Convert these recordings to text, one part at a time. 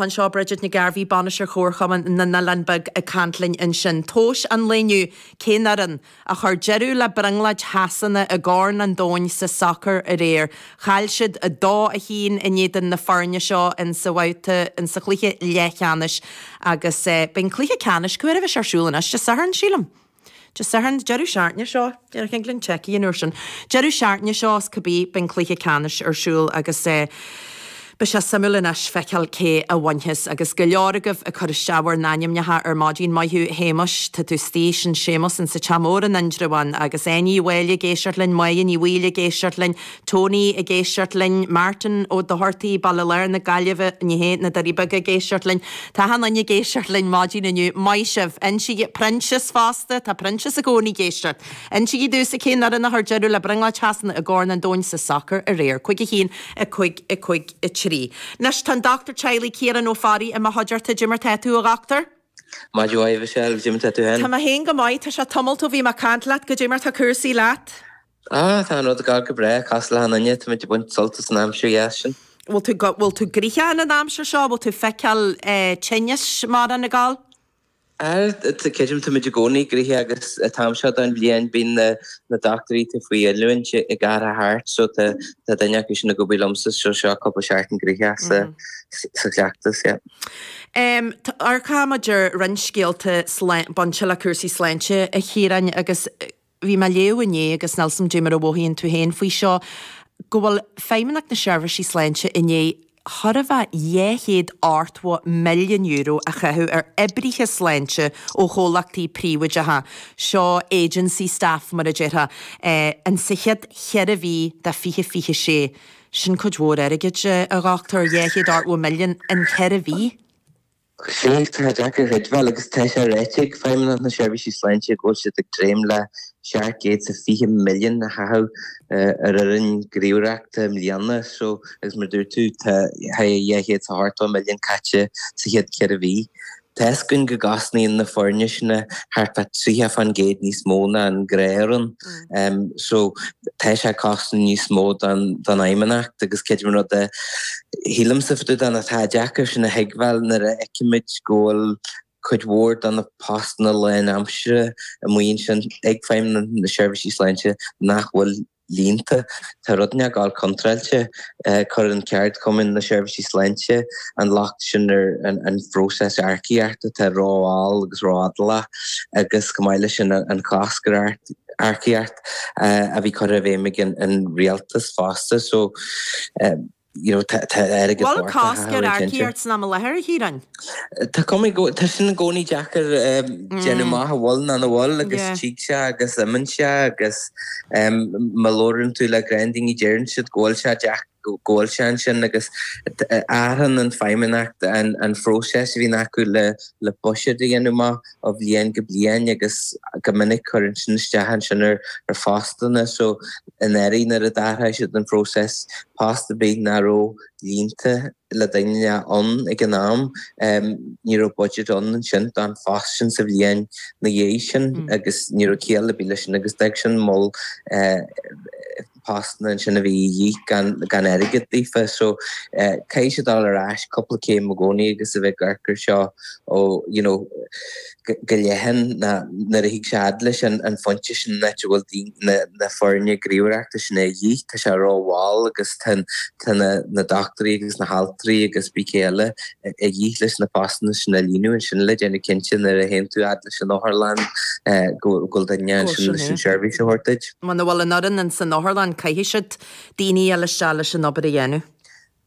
anseo Bridget Nic Gairbheith, Bainisteoir Chomharchumann na nOileán Beag ag caint linn ansin. Tomhais an lae inniu cén fhoireann a chuir deireadh le brionglóid Shasana i gCorn an Domhain sa sacar aréir. Chaill siad 2, 1 in éadan na foirne seo in sa bhabhta in sa chluiche leathcheannais agus beidh an cluiche ceannais, cén uair a bheas sé ar siúl anois, Dé Sathairn, sílim. Dé Sathairn, deireadh seachtaine seo, déanfaidh Glenn checkáil an uair sin, deireadh seachtaine seo cibé, beidh an cluiche ceannais ar siúl agus beidh sé suimiúil anois feiceáil cé a bhainfeas. Agus go leor agaibh ag cur isteach bhur n-ainmneacha ar maidin, maith thú Shéamais, tá tú istigh ansin Séamus insa Teach Mór in Indreabhán agus Áine Uí Mháille ag éisteacht linn, Moya Ní Bhaoill ag éisteacht linn, Tony ag éisteacht linn, Martin Ó Dochartaí, Baile Láir na Gaillimhe, ní hé, na Doirí Beaga ag éisteacht linn, tá Seáinín ag éisteacht linn maidin inniu, maith sibh! Insígí, Proinsias fosta, tá Proinsias i gcónaí ag éisteacht. Insígí domhsa cén fhoireann a chuir deireadh le brionglóid Shasana i gCorn an Domhain sa sacar aréir? 5 1 5 5 3 Anois tá an dochtúir teaghlaigh Ciarán Ó Fearraigh i mo chuideachta, caidé mar atá tú a dhochtúir? Maith, caidé mar atá tú féin? Tá mé féin go maith, tá sé tamalt ó bhí mé ag caint leat, caidé mar atá cúrsaí leat? Tá rudaí ag gabháil go breá, cosúil le achan duine, táimid ag baint sult as an aimsir dheas sin. Bhfuil tú, bhfuil tú gnoitheach in an aimsir seo, bhfuil tú feiceáil tinneas ar bith ag gabháil? Á creidim táimid i gcónaí gnoitheach agus an t-am seo den bhliain bíonn na na dochtúirí atá faoi oiliúint ag athrú thart so tá tá duine acu sin ag obair liomsa so seo cúpla seachtain gnoitheach sa sa chleachtas yeah. Em tá ar caithfimid amharc ar roinnt scéalta sláin bainteach le cúrsaí sláinte a Chiaráin agus eh. bhí mé ag léamh inné agus níl a fhios agam caidé mar a mhothaíonn tú féin faoi seo go bhfuil Feidhmeannacht na Seirbhísí Sláinte i ndiaidh corradh le €280 milliún a chaitheamh ar oibrithe sláinte ó chomhlachtaí príobháideacha, seo agency staff mar a déarfá, an sa chéad cheithre mhí de 2026. Sin cuid mhór airgid, a Dhochtúir, dhá chéad ochtó milliún in ceithre mhí. Sea Tá sé deacair a thuigbheáil agus tá sé ráite ag Feidhmeannacht na Seirbhísí Sláinte go bhfuil siad ag dréim le seacht gcéad sa fiche milliún a chaitheamh ar fhoireann gníomhaireachta i mbliana so agus mar dúirt tú tá tá dhá chéad is ochtó milliún caite sa chéad ceithre mhí. Tá fhios againn go gcosnaíonn na foirne sin thart fá triocha fán gcéad níos mó ná an gnáthfhoireann. so tá sé ag cosaint níos mó don Fheidhmeannacht agus creidim an rud a shílimse fá dtaobh de atá deacair sin a thuigbheáil nuair a fheicimid go bhfuil cuid mhór de na postanna lán aimsire amuigh ansin ag Feidhmeannacht na Seirbhísí Sláinte nach bhfuil líonta. Tá rud inteacht ag gabháil contráilte, cuireann ceardchumainn na seirbhísí sláinte an locht sin ar an phróiseas earcaíocht atá ró-mhall agus ró-fhadálach agus, chomh maith leis sin, an cosc ar earcaíocht a bhí curtha i bhfeidhm ag an rialtas fosta. Bhfuil cosc ar earcaíocht san am i láthair, a Chiaráin. Tá cuma air go. Tá sin i gcónaí deacair a dhéanamh amach an bhfuil nó nach bhfuil agus tig sé agus imíonn sé agus má labhrann tú le roinnt daoine deireann siad go bhfuil sé deac, go bhfuil sé ansin agus athránn an fheidhmeannacht an próiseas a bhíonn acu le buiséad a dhéanamh amach. ó bhliain go bliain agus go minic cuireann sin isteach ansin ar phostanna so i mbliana nuair a d'athraigh siad an próiseas post ar bith nach raibh líonta le duine ann ag an am ní raibh budget ann ansin don phost sin sa bhliain ina dhiaidh sin agus ní raibh ciall ar bith leis sin agus d'fhag sin moll postanna ansin a bhí a dhíth gan airgead daofa so caithfidh siad dul ar ais cúpla céim i gcónaí agus a bheith ag amharc ar seo ó you know go leathan nó nuair a thig sé fhad leis an an phointe sin áit a bhfuil daoine na foirne gníomhaireachta seo a dhíth tá sé rómhall agus tá tá na na doctúirí agus na haltraí agus cibé eile a dhíth leis na postanna sin a líonadh ansin le déanamh cinnte nuair a théann tú fhad leis an otharlann go bhfuil duine sin leis an seirbhís a thabhairt duit. Muna bhfuil an fhoireann insan otharlann caithfidh siad fháil daoine eile isteach leis an obair a dhéanamh.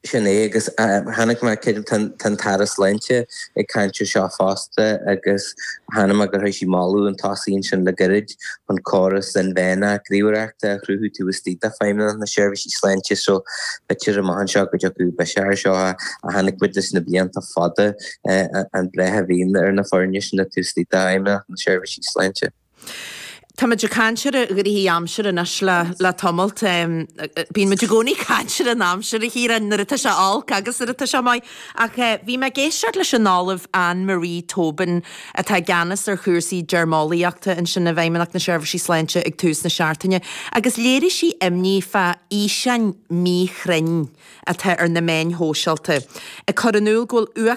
Sin é agus chonaic mé creidim tá an tAire Sláinte ag caint ar seo fosta agus chonaic mé gur thug sí moladh chun tosaigh ansin le goirid chun córas inmheánach ríomhaireachta a chruthú taobh istigh d'Fheidhmeannacht na Seirbhísí Sláinte so b'fhéidir amach anseo go dtiocfadh biseach ar seo ach chonaic muid leis na blianta fada an bhraith a bhíonn ar na foirne sin taobh istigh d'Fheidhmeannacht na Seirbhísí Sláinte. Tá muid ag caint ar an dea-aimsir anois le tamalt. Bíonn muid i gcónaí ag caint ar an aimsir, a Chiaráin, nuair atá sé olc agus nuair atá sé maith. Ach bhí mé ag éisteacht leis an Ollamh Anne Marie Tobin, atá i gceannas ar chúrsaí deirmeolaíochta ansin i bhFeidhmeannacht na Seirbhísí Sláinte ag tús na seachtaine, agus léirigh sí imní fá fhíseáin mhíchruinne atá ar na meáin shóisealta ag cur in iúl go bhfuil uach.